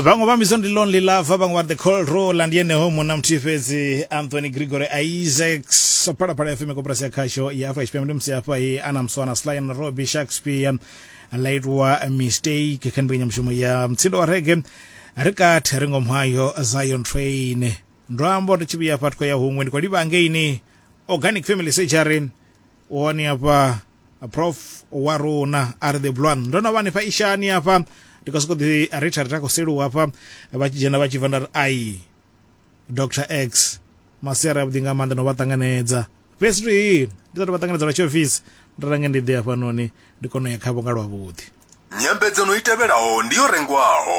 vhaṅwe vha mbidzo ndi lonely lover vhaṅwe vha the cold roller ndi yeneho munna muthihi fhedzi anthony gregory isaacs phalaphala fm koporasi ya khasho ya afurika tshipembe ndi musi hafha he ana mswana sly na robbie shakespeare laitwa mistake kha mbekanyamushumo ya mtsindo wa rege ri kathi ri ngomu hayo zion train ndo amba uri tshivhiya hafha tikho ya huṅwe ndi khou livha angeini organic family surgery wone hafha prof wa runa a ri the blwan ndo no vha hanefha ishani hafha ndi khou sokou ḓi ritha ritha khou seluwa hafha vha tshi dzhena vha tshi bva nda ri ai dr x masiari avhuḓi nga maanḓa no vha ṱanganedza fhedzi to hii ndi sathu vha ṱanganedza lwa tshiofisi ndo range ndi ḓi hafhanoni ndi kone u ya khavho nga lwavhuḓi nyambedzano i tevhelaho ndi yo rengwaho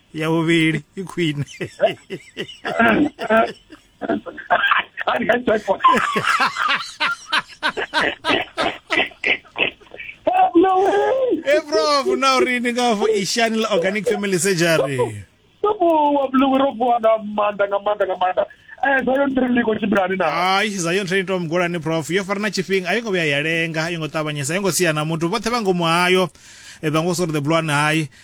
ya vhuvhili i khwine e prof na uri ni nga fo ishani la organic family surgery sobuwa bulungu ro vuwa nga maanḓa nga maanḓa nga maanḓa eh zayon training liko tshimbilani na ai zayon training to mugulani prof yo fara na tshifhinga a yo ngo vhuya ya lenga a yo ngo ṱavhanyesa a yo ngo sia na muthu vhoṱhe vha ngomu hayo e vha ngo sori the blue one hai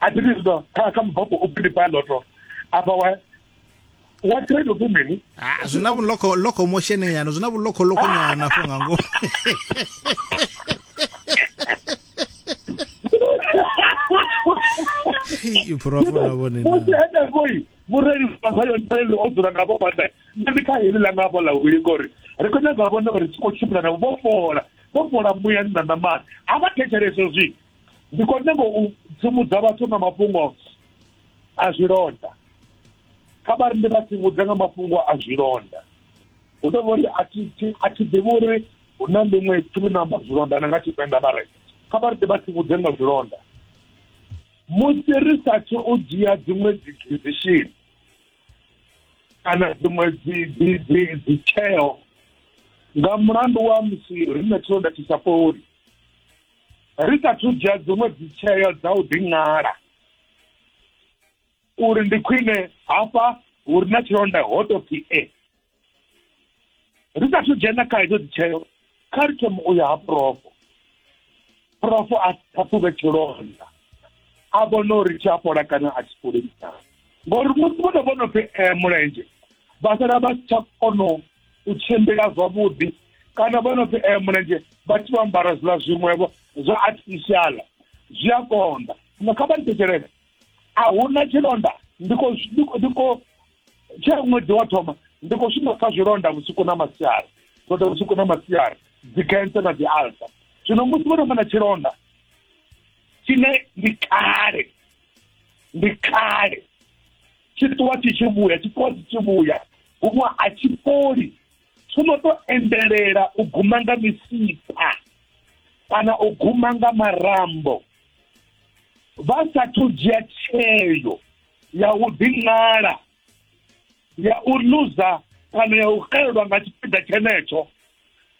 a thi ndi zwa kha kha mubvafho u pindi pa loto apa wa wa trade ku mini ah zwi na vhuloko loko motion nyana zwi na vhuloko loko nyana fo nga ngomu iphurofula vhone musi henefhoi mureli vasayo ntreli o dzula navho vhane nṋe ndi kha heli ḽa ngavho ḽa wili ngori ri khou nyanga vhone uri tshi khou tshimbila navho vho fola vho fola muyani na ṋamani a vha thetshelese zwi ndi khou nyanga u tsivhudza vhathu nga mafhungo a zwilonda kha vha ri ndi vha tsivhudza nga mafhungo a zwilonda hu tou vha uri a thi ḓivhi uri hu na ḽiṅwe thumi na amba zwilonda na nga tshipenda vha re kha vha ri ndi vha tsivhudze nga zwilonda musi ri sathu u dzhia dziṅwe dzi decision kana dziṅwe dzi dzi dzi dzi tsheo nga mulandu wa musi ri na tshilonda tshi sa fholi ri sa thu dzhia dziṅwe dzitsheo dza u ḓiṅala uri ndi khwine hafha hu re na tshilonda ho tou pfi e ri sa thu dzhena kha hedzo dzitsheo kha ri thoma u ya ha profo profo a ṱhaṱhuvhe tshilonda a vhona uri tshi a fhola kana a tshi fholi ngori musi vho no vho no pfi eh, mulenzhe vha sala vha si tsha kono u tshimbila zwavhuḓi kana vho no pfi eh mulenzhe vha tshi vho ambara zwiḽa zwiṅwevho zwa artificial zwi a konḓa zwino kha vha ni thetshelele a hu na tshilonda ndi khou ndi khou- ndi khou tshe ṅwedzi wa thoma ndi khou shuma kha zwilonda vhusiku na masiari zwilonda vhusiku na masiari dzikhentsa na dzialsa zwino musi vho no vha na tshilonda tshine ndi kale ndi kale tshi ṱuwa tshi tshi vhuya tshi ṱuwa tshi tshi vhuya huṅwe a tshi fholi tsho no to endelela u guma nga misipha kana u guma nga marambo vha sathu dzhia tsheo ya u ḓiṅala ya u luza kana ya u xelelwa nga tshipiḓa tshenetsho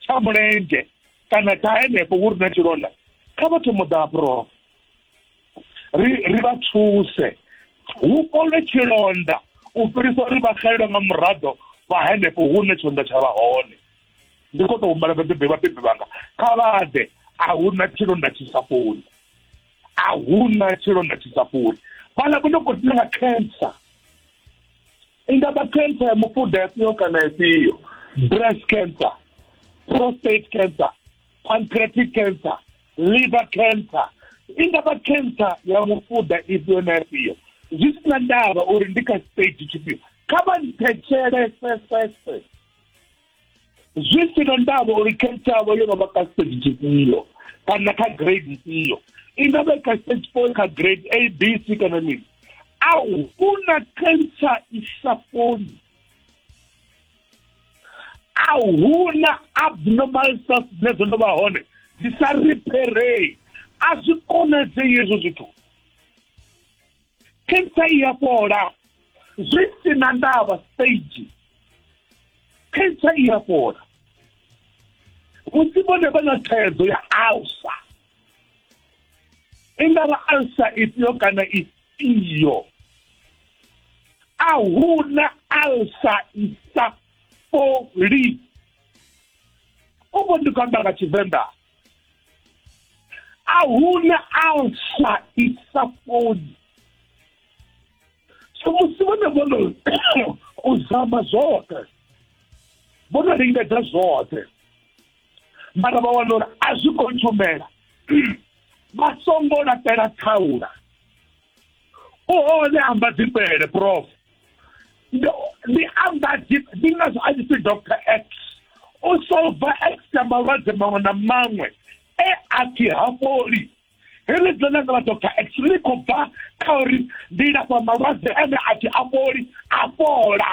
tsha mulenzhe kana tsha henefho hu ri na tshilonda kha vhathu muḓa ha ri ri vha thuse hu kolwe tshilonda u fhirisa uri vha xelelwe nga muraḓo vha henefho hune tshilonda tsha vha hone ndi khou tou humbela vhabebi vhabebi vhanga kha vha ḓe a hu na tshilonda tshi sa fholi a hu na tshilonda tshi sa fholi vhala vho no khou ḓina nga cancer i nga vha cancer ya mufuda efhio kana efhio breast cancer prostate cancer pancreatic cancer liver cancer i nga vha cancer ya mufuda ifhio na ifhio zwi si na ndavha uri ndi kha stage tshifhio kha vha nthetshelesesese zwi si na ndavha uri cancer yavho yo no vha kha stage tshifhio kana kha grade ifhio i nga vha kha stage four kha grade a b c kana mini a hu na cancer i sa fholi a huna abnormal stuff dzine dzo no vha hone dzi sa repairei a zwi konadzei hezwo zwithu cancer i ya fhola zwi si na ndavha stage cancer i ya fhola musi vhone vha na thaidzo ya alsa ingara alsa ifhio kana ifhio a hu na alsa i sa fholi u vho ndi khou amba nga tshivenḓa a hu na alsa i sa fholi so musi vhone vho no u zama zwoṱhe vho no lingedza zwoṱhe mara vha wana uri a zwi khou tshumela vha songo laṱela thaula u hone amba dzifhele prof ndi amba ndi ngazwo a tshi pfi dr x u solva extra malwadze maṅwe na maṅwe e a pfi ha fholi heḽi dzo nanga vha dr x ḽi khou bva kha uri ndi lafha malwadze ane a pfi a fholi a fhola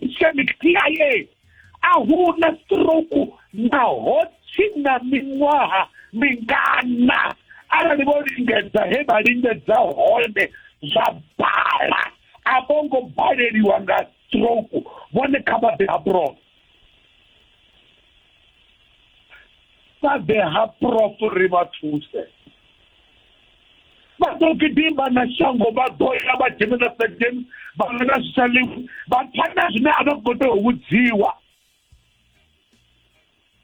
islamic cia a hu na stroke naho tshi na miṅwaha mingana arali vho lingedza he vha lingedza hone zwa bala a vho ngo baleliwa nga stroke vhone kha vha ḓe abroad vha ḓe ha prof ri vha thuse vha ḓo gidima na shango vha ḓo ya vha dzhena na segen vha ḽa na zwishalimu vha pfa na zwine a vha khou tea u vhudziwa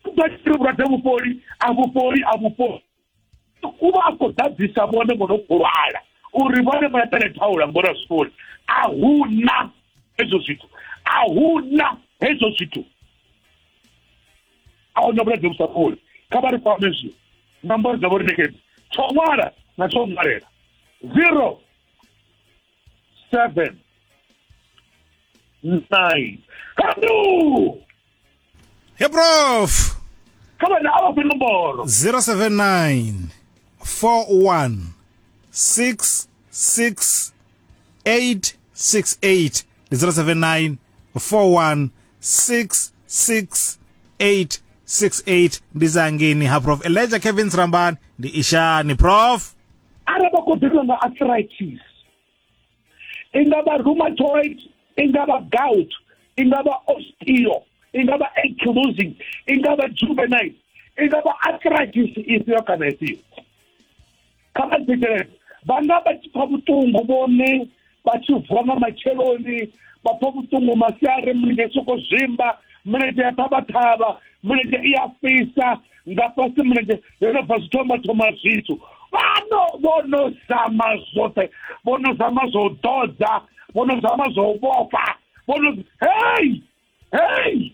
ḓo tshiri vhulwadze vhufholi a vhufholi a vhufholi u vha a khou ḓadzisa vhone vho no khou lwala uri vhone vha eḓele thaula ngori a zwi fholi a hu na hezwo zwithu a hu na hezwo zwithu a huna vhulwadze vhu sa fholi kha vha ri kwame zwi nomboro dzavho ri nekedze tsho ṅwala na tsho ṅwalela zero seven nine kanu he prof kha vhana a vha fhe nomboro 079 41 6 6 868 ndi 079 41 66 868 ndi zangeni ha prof eleja kevin srambani ndi ishani prof arali vha khou ḓiriwa nga arthritis i nga vha rheumatoid i nga vha gout i nga vha osteo i nga vha ankylosing i nga vha juvenile i nga vha arthritis ifhio kana ifhio kha vha ḓikelele vhanga vha tshi pfa vhuṱungu vhone vha tshi vuwa nga matsheloni vha pfa vhuṱungu masiari mulenzhe soko zwimba mulenzhe ya ṱhavhaṱhavha mulenzhe i a fhisa nga fhasi mulenzhe yo no bva zwithoma thoma zwithu vhano vho no zama zwoṱhe vho no zama zwo u ḓodza vho no zama zwo u vhofha vho no hei hei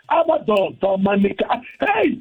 a vha ḓoḓo manika hei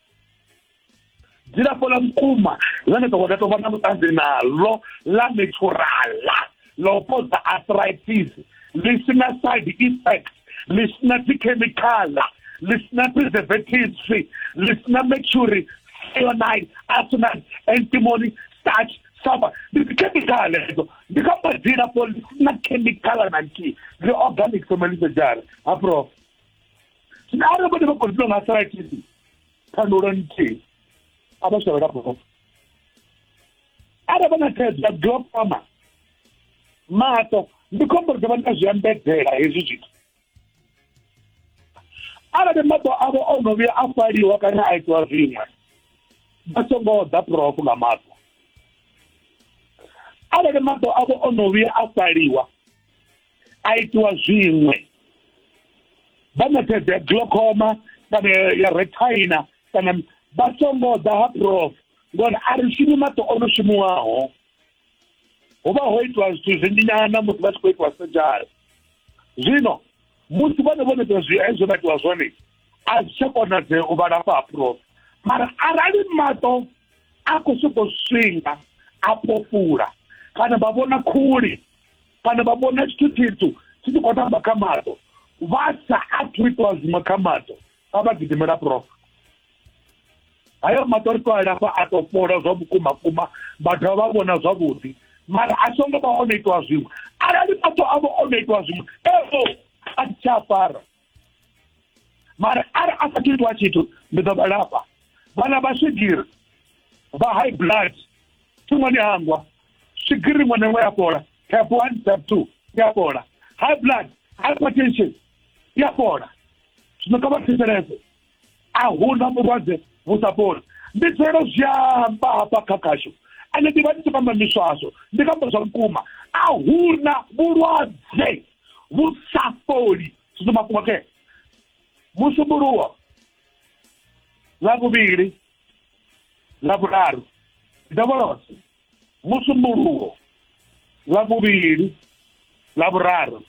dzilafho ḽa vhukuma ḽone dokotela tovha na vhuṱanzi naḽo ḽa naturala ḽo fhodza arthritis ḽi sina side effect ḽi sina dzikhemikhala ḽi sina preservatives ḽi sina mercury cyanide arsenal antimony starch saba ndi dzikhemikhala edzo ndi kha madzilafho ḽi sina khemikhala na nthihi ḽi organic somelisa jara ha prof zwino arali vhone vha khou dzula nga saratisi thandula nthihi a vha shavhela bofo arali vha na thaidzo ya glaucoma maṱo ndi khombo ri ḓo vha na zwi ambedzela hezwi zwithu arali maṱo avho o no vhuya a faliwa kana a itiwa zwiṅwe vha songo ḓa profu nga maṱo arali maṱo avho o no vhuya a faliwa a itiwa zwiṅwe vha ṋetshedze glaucoma kana ya retina kana vha songo ḓa ha prof ngori a ri shumi maṱo o no shumiwaho ho vha ho itiwa zwithu zwinzhi nyana musi vha tshi khou itiwa sejari zwino musi vhone vho neta zwi hezwo vha itiwa zwone a zwi tsha konadzea u vha lafha ha prof mara arali maṱo a khou sokou swinga a pofula kana vha vhona khuli kana vha vhona tshithu tshitsu tshi tshi khou tamba kha maṱo vha sa athu itwa zwiṅwe kha maṱo a vha gidimela prof hayo maṱo ri to alafha a to fhola zwa vhukuma kuma vha dovha vha vhona zwavhuḓi mara a songo vha o no itwa zwiṅwe arali maṱo avho o no itwa zwiṅwe evo a tsha fara mara ari a sa titwa tshithu ndi ḓo vha lafha vhana vha swigiri vha high blood thungo ni hangwa swigiri iṅwe na iṅwe ya fhola tap one tap two ya fhola high blood hypertension ya fhola zwino kha vha thetshelese a huna vhulwadze vhu sa fholi ndi tselo zwi amba hafha kha khashu ane ndi vha ndi tshi kamba miswaswo ndi kamba zwa vhukuma a huna vhulwadze vhu sa fholi zwino mafhungo ke musumbuluwo nga vhuvhili nga vhuraru ndovholoso musumbuluwo nga vhuvhili nga vhuraru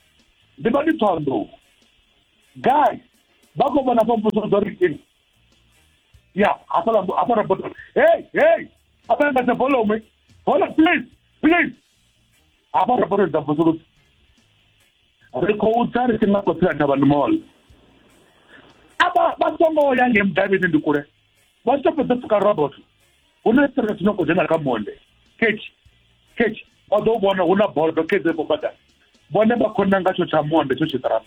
ndi vha ndi ṱhohoḓou gai vha khou vhona fhomvuso dzo ri Yeah, I thought I, I thought about it. Hey, hey, I thought about the follow me. Hold on, please, please. I thought about it. Absolutely. Re khou tsa ri tshi nga khou tsira thavhani mall. Aba vha songo ya nge mudavhini ndi kule. Vha tshi fhedza pfuka robot. Hu na tsira tshi no khou dzhena kha monde. Ketshi, ketshi. Vha ḓo vhona hu na bodo khedze vho badani. Vhone vha khou nanga tsho tsha monde tsho tshiṱaraṱa.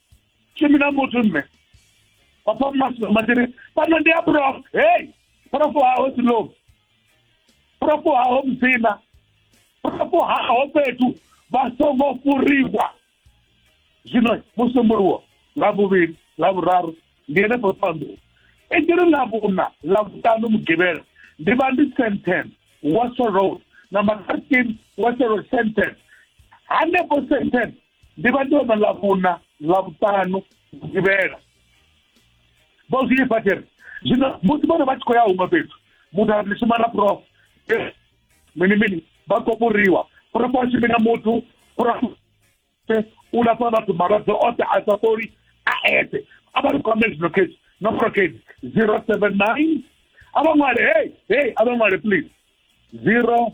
ke mina motho mme papa matene bana ndi ya prof hey prof haho silo prof haho mzina prof haho fhethu vha songo furiwa zwino musumbuluwo nga vhuvhili nga vhuraru ndi ene phanḓu i tshi ri ḽa vhuna ḽa vhuṱanu mugivhela ndi vha ndi senten waso road na matarkin waso road senten hanefho senten ndi vha ndi hone ḽa vhuna ḽa vhuṱanu vhugivhela vho zwi ipfa tshiri zwino musi vhone vha tshi khou ya huṅwe fhethu muthu a shuma na prof mini mini vha khou fhuriwa prof a shumi na muthu prof u lafha vhathu malwadze oṱhe a sa fholi a eṱhe a vha ri kwame zwino khesi nomboro khesi zero seven nine a vha ṅwale hey hey a vha ṅwale please zero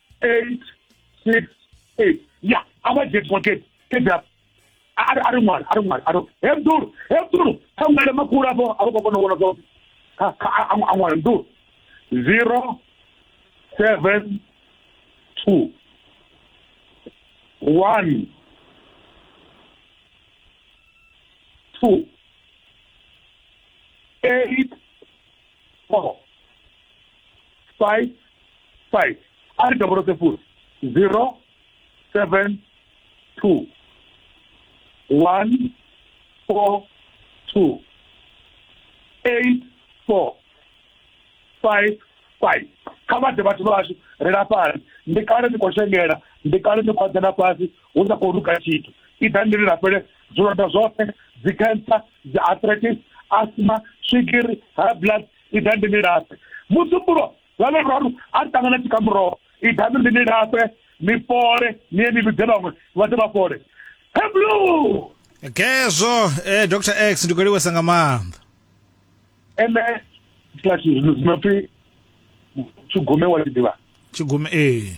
eight six eight ya a vha dzhie pocket fhedzi a ri ṅwale a ri ṅwale a ri hebdulu hebdulu kha ṅwale makulu afho a vha khou kona u vhona zwavhuḓi a ṅwale mdulu zero seven two one two eight four five five a re toboloke full zero seven two one four two eight four five five kha vha ḓe vhathu vhashu ri lafhani ndi kale ni khou shengela ndi kale ni khou adzana fhasi hu sa khou luka tshithu i ḓa ndi lilafhele zwilonda zwoṱhe dzi cancer dzi arthritis asthma swigiri high blood i ḓa ndi lilafhe musumbulo lwa luraru a ri ṱangana tshikamuroho i ḓa ndi lilafhe ni fole ni ye ni vhidze vhaṅwe vha ḓe vha fole heblu gezwo eh, dr x ndi khou livhuwesa nga maanḓa ene slash zwi no pfi tshugume wa tshi ḓivha tshigume ee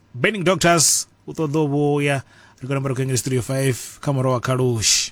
burning doctors u ṱoḓa u vhuya ri khou namba ri khou engela studio 5 kha murahu wa khalushi